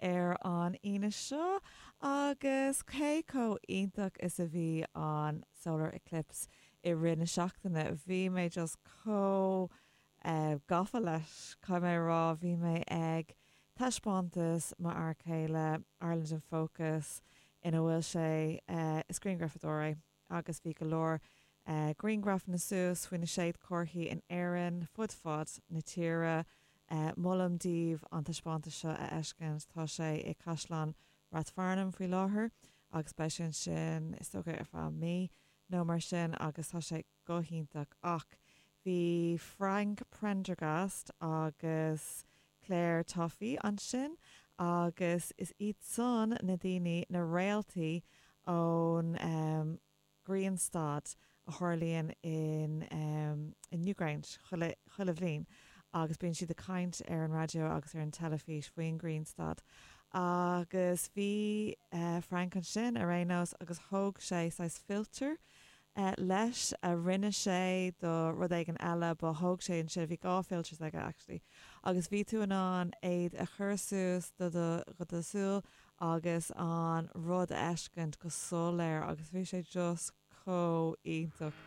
ar an Aoine seo agus cé chomh iontach is a bhí an Solar Eclipse i rith na seachtaine. Bhí mé just chomh eh gafa leis, caithfidh mé a rá, bhí mé ag taispeántas m'fhear chéile, Ireland in Focus, ina bhfuil sé eh is grianghrafadóir é, agus bhí go leor grianghrafanna suas faoi na séadchomharthaí in Éirinn fud fad na tíre. Molaim daoibh an taispeántas seo a fheiscint. Tá sé i gCaisleán Rathfarnham faoi láthair agus beidh sé ansin is dócha ar feadh mí nó mar sin agus tá sé go hiontach. Ach Bhí Frank Prendergast agus Clare Tuffy ansin agus is iadsan na daoine, na réaltaí ón ghrianstad a tharlaíonn in Newgrange chuile bhliain agus bíonn siad ag caint ar an raidió agus ar an teilifís faoin ghrianstad agus bhí Frank ansin ar aon nós agus thóg sé saghas filter eh, leis, a rinne sé do rud éigin eile, ba, thóg sé ansin, bhí dhá filters aige actually, agus bhí tú in ann iad a chur suas do do, go do súil agus an rud a fheiscint go soiléir agus bhí sé just chomh iontach.